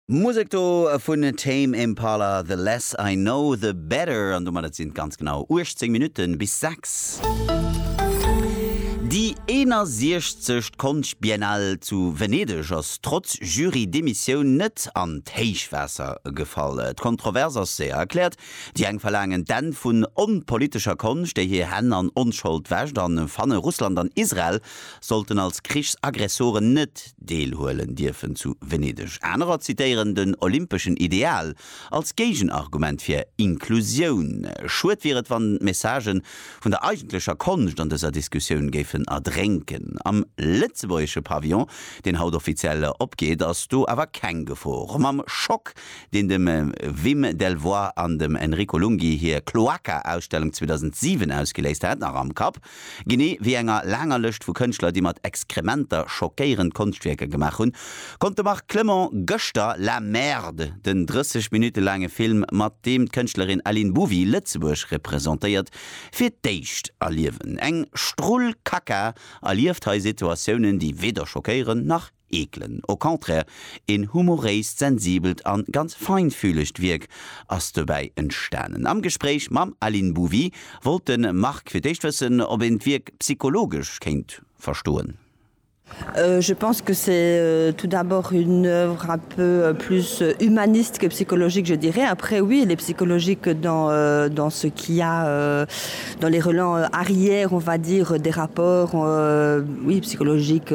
Musek do vun Tame Impala, The Less I Know The Better, an domat et sinn et ganz genau 18 Minutten bis 6. Déi 61. Konschtbiennale zu Venedeg ass trotz Jury-Demissioun net an d'Héichwaasser gefall. D'Kontrovers ass séier erkläert, Déi eng verlaangen d'Enn vun onpolitescher Konscht, déi hir Hänn an Onschold wäscht, a fanne Russland an Israel sollten als Krichsaggressoren net deelhuelen dierfen zu Venedeg. Anerer zitéieren den olympeschen Ideal als Géigenargument fir Inklusioun. Schued wier et, wann d'Messagë vun der eigentlecher Konscht an dëser Diskussioun géifen erdrénken. Am lëtzebuergesche Pavillon, deen haut offiziell opgeet, ass do awer keng Gefor. Mam Schock, deen dem Wim Delvoye an dem Enrico Lunghi hir Cloaca-Ausstellung 2007 ausgeléist hat, nach am Kapp, Genee wéi enger laanger Lëscht vu Kënschtler, déi mat Exkrementer schockéierend Konschtwierker gemaach hunn, konnt de Marc Clement gëschter La Merde, den 30 Minutte laange Film, mat deem d'Kënschtlerin Aline Bouvy Lëtzebuerg representéiert, fir d'éischt erliewen. Eng Strull Kacka erlieft hei Situatiounen, déi weder schockéieren, nach. eekelen. Au contraire, een humoréist, sensibelt a ganz feinfühlegt Wierk ass dobäi entstanen. Am Gespréich mam Aline Bouvy wollt de Marc fir d'éischt wëssen, ob een d'Wierk psychologesch kéint verstoen. Je pense que c'est tout d'abord une œuvre un peu plus humaniste que psychologique, je dirais. Après, oui, elle est psychologique dans, dans ce qu'il y a dans les relents arrière, on va dire, des rapports, oui, psychologiques,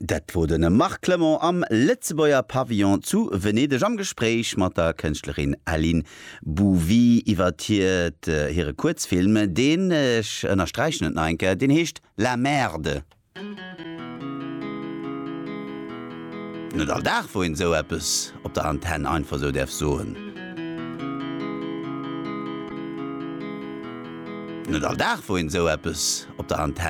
Dat wor den Marc Clement am Lëtzebuerger Pavillon zu Venedeg am Gespréich mat der Kënschtlerin Aline Bouvy iwwert hiert hire Kuerzfilm, deen, ech ënnersträichen et nach eng Kéier, deen heescht La Merde. Net all Dag wou een esou eppes op der Antenn einfach esou däerf soen. Net all Dag wou een esou eppes op der Antenn.